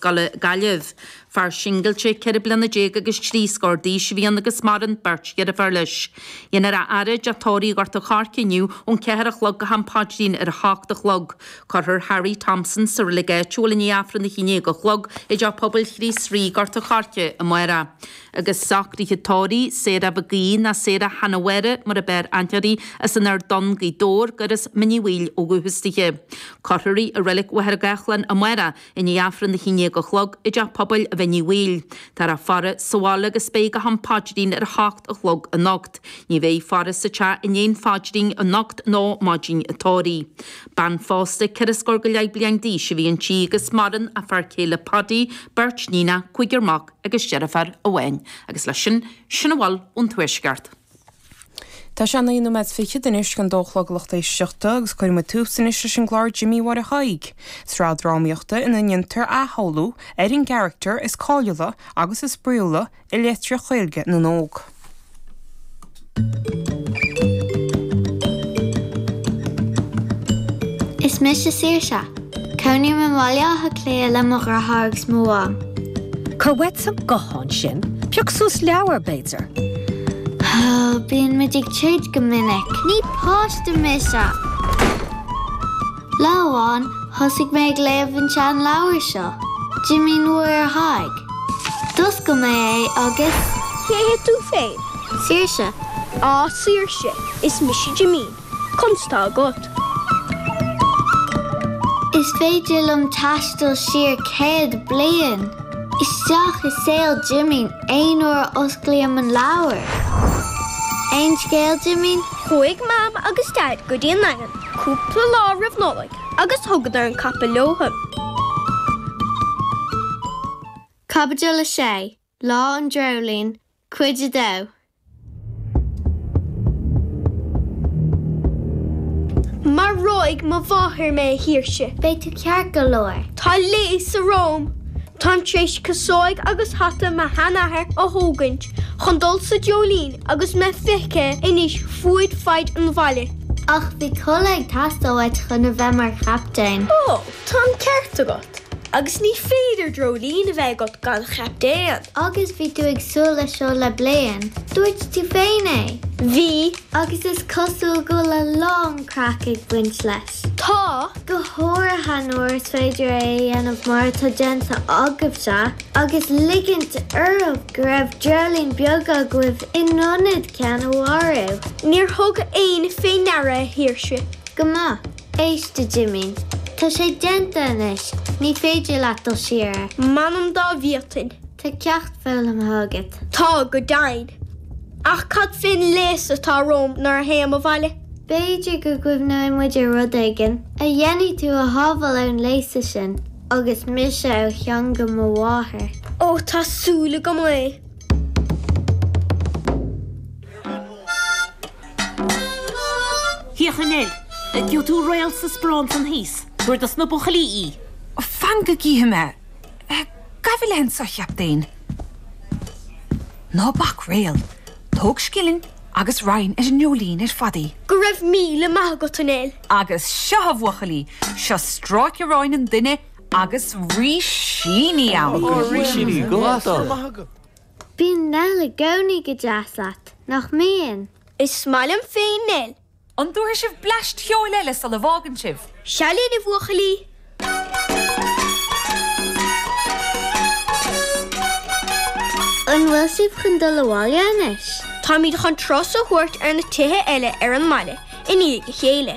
Gaillimh. Fear singilte ceithre bliana déag agus trí scór d'aois a bhí ann agus maireann beirt dheirfiúr leis. Déanfar a fhaire i dteach tórraimh Ghort an Choirce inniu ón ceathair a chlog go ham paidrín ar a hocht a chlog. Cuirfear Harry Thompson sa reilig áitiúil i ndiaidh Aifreann a haon déag a chlog i dTeach Pobail Chríost Rí, Gort an Choirce, amárach. Agus socruithe tórraimh, Sarah McGee, nó Sarah Hanna Mháire mar ab fhearr aithne uirthi, as an Ard Donn, Gaoth Dobhair, gur as Mín Uí Bhaoill ó dhúchas di. Cuirfear í i Reilig Mhachaire Gathlán amárach I ndiaidh Aifreann a haon déag a chlog i dTeach Pobail Mhín Uí Bhaoill. Táthar á faire sa bhaile agus beidh go ham paidrín ar a hocht a chlog anocht. Ní bheidh faire sa teach i ndiaidh an phaidrín anocht ná maidin an tórraimh. Bean phósta ceithre scór go leith bliain d'aois a bhí inti agus maireann a fear céile Padaí, beirt iníonacha, cúigear mac agus deirfiúr amháin. Agus leis sin, sin a bhfuil ón tuaisceart. Tá sé a naoi nóiméad is fichead anois chun a dó a chlog, a lucht éisteachta agus cuirfidh muid tús anois leis an gclár Jimín Mháire Thaidhg, sraith drámaíochta ina ndéantar athshamhlú ar an gcaractar is cáiliúla agus is spraíúla i litríocht Ghaeilge na n-óg. Is mise Saoirse. Cónaím i mBaile Átha Cliath le mo dheartháir agus mo mham. Cuir uait an guthán sin. Pioc suas leabhar, b'fhéidir. Bíonn muid ag troid go minic. Ní páiste mise! Lá amháin, thosaigh mé ag léamh an tseanleabhair seo, Jimín Mháire Thaidhg. D'oscail mé é agus. Cé hé tú féin? Saoirse. Á Saoirse, is mise Jimín. Conas tá agat? Is féidir liom taisteal siar céad bliain, isteach i saol Jimín aon uair a osclaím an leabhar. Aon scéal, Jimín? Chuaigh Mam agus Daid go dtí an Daingean cúpla lá roimh Nollaig agus thugadar an capall leothu. Caibidil 6. Lá an Dreoilín, Cuid a Dó. Maróidh mo mháthair mé, a Shaoirse. Beidh tú ceart go leor. Tá léasadh romham. Táim tar éis casóig agus hata mo sheanathar a thógaint chun dul sa Dreoilín agus mé feicthe anois fuaid faid an bhaile. Ach bhí culaith ag teastáil uait chun a bheith mar chaptaen. Ó, tá an ceart agat. Agus ní féidir dreoilín a bheith agat gan chaptaen. Agus bhí tú ag súil leis seo le bliain, dúirt tú féin é! Bhí, agus is cosúil go bhfuil a lán craic ag baint leis. Tá! Go háirithe nuair is féidir é a dhéanamh mar atá déanta agaibhse, agus ligint oraibh go raibh dreoilín beag agaibh in ionad ceann a mharú! Níor thug éinne fé ndeara, a Shaoirse. Go maith. Éist, a Jimín, tá sé déanta anois, ní féidir leat dul siar air. M'anam dá bhféadfainn. Tá ceacht foghlamtha agat. Tá, go deimhin. Ach cad fén léasadh atá romham nuair a théim abhaile? B'fhéidir go gcuimhneoidh muid ar rud éigin a dhéanfaidh tú a shábháil ón léasadh sin, agus mise ó theanga mo mháthar. Ó, tá súil agam é. Hi a Jimín, gheobhaidh tú réal sa sprán san thíos. Tabhair dos na buchaillí í. Fan go gcífidh mé. Gabh i leith annso a chaptaein. Ná bac réal. Tóg scilling agus roinn ar an ngeoilín ar fad í. Go raibh míle maith agat a Nell. Agus seo a bhuachaillí, seo stráice aráin an duine agus rísíní ann. Ó, rísíní, go maith dom. Bíonn Nell i gcónaí go deas leat, nach mbíonn? Is maith liom féin Nell. An dtabharfaidh sibh bleaist cheoil eile sula bhfágann sibh? Seo linn, a bhuachaillí! An bhfuil sibh chun dul abhaile anois? Táimid chun turas a thabhairt ar na tithe eile ar an mbaile i ndiaidh a chéile.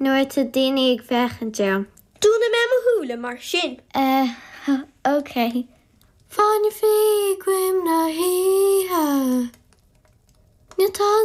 Nuair ata daoine ag féachaint orm. Dúnfaidh mé mo shúile mar sin. Eh, ok. Fáinne fí i gcoim na hoíche. Níl tada.